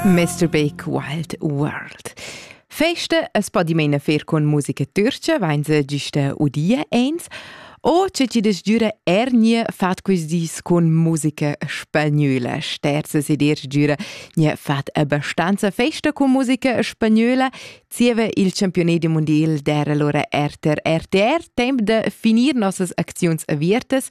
Masturbake Wild World. Feste es po dimena fer con musica türcia, vain se giusta udie eins, o ce ci desgiura ernie fat quis dis con musica spagnöla. Sterze se dir giura nie fat abbastanza festa con musica spagnöla, zieva il campionet mondial der allora RTR RTR temp de finir nossas acziuns aviertas,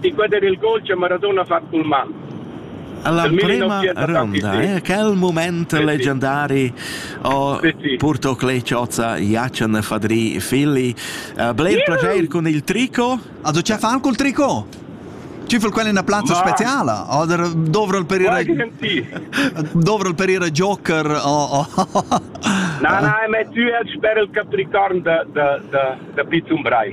Inquader il gol che Maradona ha fatg cul man. La prima ronda, eh? quel moment leggendari ho purto Cleciozza Jacen Fadri Filli. Uh, bler piacere con il tricot. Also c'è fan col tricot? Ci fu quella una piazza speciale? Oder dovrò per il dovrò per il Joker o No, no, ma tu hai sper il capricorn da da da da Pizzum Brai.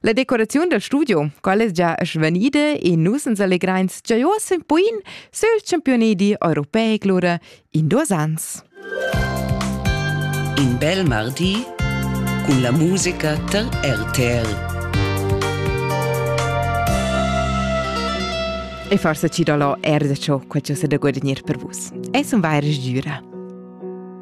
La decoraziun dal studio, quella es già svanida e nus ans allegrains già uoss ün poin sül championedi europeic lura in duos ans. In bel mardi cun la musica dal RTL. E forse ci do lo er da ciò che ciò se da guadagnare per vus. Es un vaira sgüra.